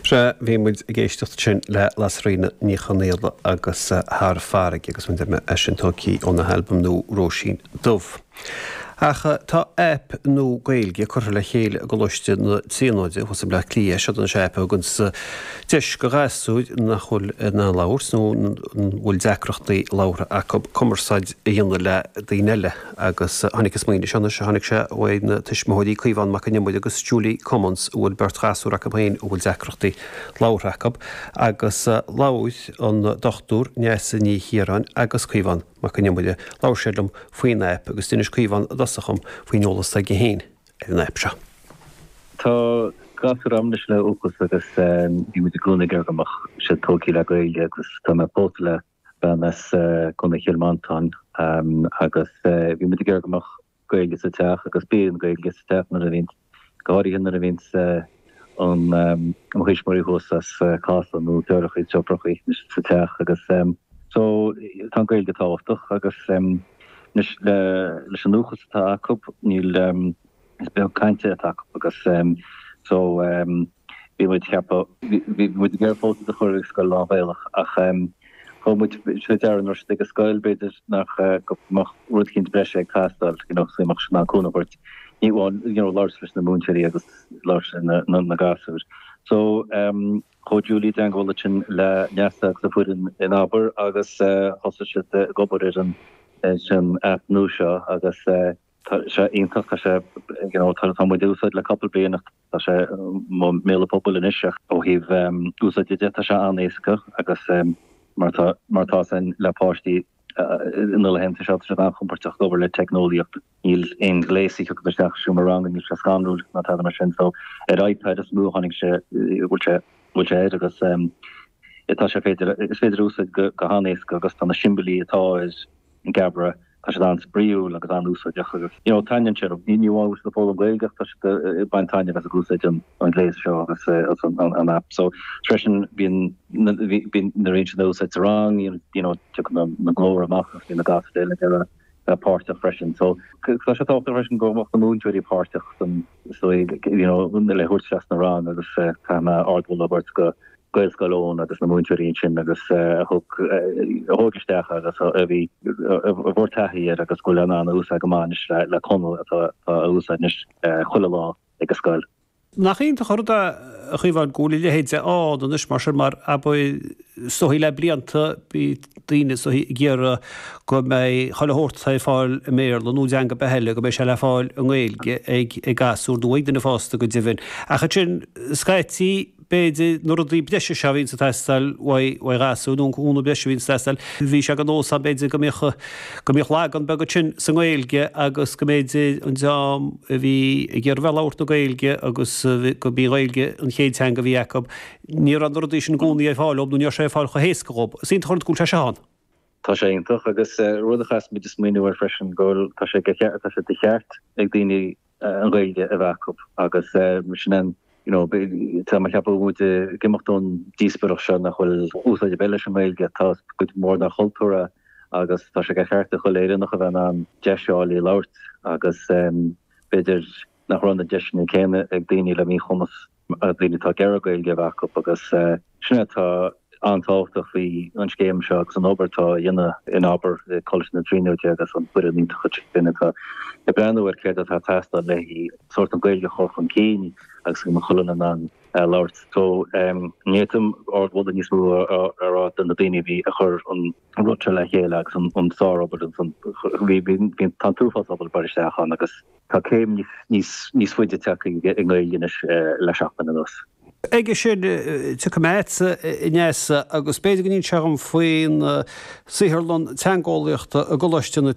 Sea, bhí muid ag éisteacht ansin le Lasairfhíona Ní Chonaola agus Thar Farraige agus mar a deir mé é sin tógtha óna halbam nua Róisín Dubh. Ach tá aip nua Gaeilge curtha le chéile i gColáiste na Tríonóide thuas i mBleá Cliath. Seod an aip a thugann deis do ghasúir nach bhfuil in ann labhairt nó a bhfuil deacrachtaí labhartha acu cumarsáid a dhéanamh le daoine eile. agus tháinig an smaoineamh seo, anois, tháinig sé uaidh na tuismitheoirí, Caomhán Mac An Iomaire agus Julie Cummins, a bhfuil beirt ghasúr acu féin a bhfuil deacrachtaí labhartha acu, agus labhair an Dr Neasa Ní Chiaráin agus Caomhán Mac An Iomaire, labhair siad liom faoin aip, agus d'inis Caomhán i dtosach dhom faoin eolas atá aige féin ar an aip seo. Tá gasúr agam anois le uathachas agus bhí muid i gcónaí ag iarraidh go mbeadh siad tógtha le Gaeilge agus tá mé pósta le bean as Contae Chill Mhantáin agus bhí muid ag iarraidh go mbeadh Gaeilge sa teach agus bíonn Gaeilge sa teach nuair a bhíonn, go háirithe nuair a bhíonn an, mo thuismitheoirí thuas as Casla nó deartháireachaí, deirfiúrachaí sa teach agus so tá an Gaeilge tábhachtach agus anois leis an uathachas atá acu níl, Is beag cainte atá acu agus so bhí muid ag ceapadh, bhí muid ag iarraidh fós iad a chur ag scoil lán-Ghaelach ach thug muid faoi deara nuair a bhí siad ag an scoil b'fhéidir nach, go mbeadh rud eicínt breise ag teastáil, you know, go mbeadh siad in ann cúnamh a thabhairt, ní amháin, you know, labhairt leis na múinteoirí agus labhairt le na gasúir. So chuaigh Julie i dteagmháil ansin le Neasa agus a foireann in Abair agus thosaigh siad ag obair ar an, ar an aip nua seo agus eh, Tá sé iontach, tá sé, you know, tá muid á úsáid le cúpla bliain ach tá sé i mbéal an phobail anois ach ó thaobh úsáide de tá sé an-éasca agus mar tá, mar tá san le páistí na laethanta seo tá siad an-chompoirteach ag obair le teicneolaíocht, níl aon ghléas a thiocfadh isteach sa seomra ranga níl sé scanrúil ná tada mar sin so ar iPad is mó a tháinig sé, bhfuil sé, bhfuil sé air agus tá sé féidir, is féidir é a úsáid go han-éasca agus tá na siombailí atá air, an Geabaire, tá siad an-spraoiúil agus an-úsáideach agus you know taitníonn siad liom. Ní amháin go bhfuil siad ag foghlaim Gaeilge ach tá siad ag baint taitneamh as ag úsáid an ghléas seo agus an aip seo freisin. Bíonn nuair a bhíonn siad á úsáid sa rang you know tagann an glór amach agus bíonn na gasúir eile ag a páirteach freisin so tá sé tábhachtach freisin go mbeadh na múinteoirí páirteach ann so you know le thabhairt isteach sna rang agus caithfidh mé ardmholadh a thabhairt do Gaelscoil Eoin agus na múinteoirí ansin agus a thug, a thóg isteach agus a bhí, a bhfuair taithí ar agus go bhfuil in ann a úsáid go maith anois le, le Conall atá a úsáid anois chuile lá ag an scoil. Nach iontach an rud é, a Chaomhán, go bhfuil a leithéid ann anois mar sin mar ab é ag súil le blianta, bhí daoine ag súil, ag iarraidh go mbeadh chuile shórt atá ar fáil i mBéarla nó i dteanga ar bith eile, go mbeadh sé le fáil i nGaeilge ag, ag gasúir nó ag daoine fásta go deimhin. Ach ansin scaití, b'fhéidir, na rudaí breise seo a bhíonns ag teastáil uaidh ghasúir, nó an cúnamh breise a bhíonns ag teastáil. Bhí sé de nós ann, b'fhéidir, go mbíodh, go mbíodh lagan beag ansin sa nGaeilge agus go mb'fhéidir, an dream a bhí ag iarraidh bheith ag labhairt na Gaeilge agus go mb'í an Ghaeilge an chéad teanga a bhí acu, ní raibh na rudaí sin i gcónaí ar fáil dhóib nó ní raibh sé ar fáil chomh héasca dhóib. Is iontach an rud go bhfuil sé seo ann. Tá sé iontach. Agus rud a chaithfeas muid smaoineamh air freisin go bhfuil, tá sé, tá sé de cheart ag daoine, an Ghaeilge a bheith acu agus mar sin an you know tá mé ag ceapadh muid ag imeacht ón díospóireacht seo nach bhfuil úsáid ar bith leis an nGaeilge, tá sé ina chuid mhór dár chultúr a agus tá sé de cheart ag chuile Éireannach a bheith in ann deis a fháil í a labhairt agus b'fhéidir nach raibh na deiseanna céanna ag daoine le míchumas. daoine atá ag iarraidh Gaeilge acu agus sin é atá an-tábhachtach faoi an scéim seo agus an obair atá a dhéanamh in Abair i Coláiste na Tríonóide agus an foireann iontach sin atá ag breathnú ar céard atá ag teastáil le sórt an Gaeilge a chur chun cinn agus go mbeadh chuile duine in ann a labhairt. So ní fhéadfainn ardmholadh níos mó a rá do na daoine a bhí ag cur an rud seo le chéile agus an sár-obair ansan. Bhí an t-uafás obair ag dul isteach ann agus Tá céim níos faide tagtha ag an nGaeilge anois le seachtain anuas. Chuige sin, tiocfaidh mé agatsa, a Neasa, agus b'fhéidir go n-inseofá dom faoin tsaotharlann teangeolaíochta i gColáiste na.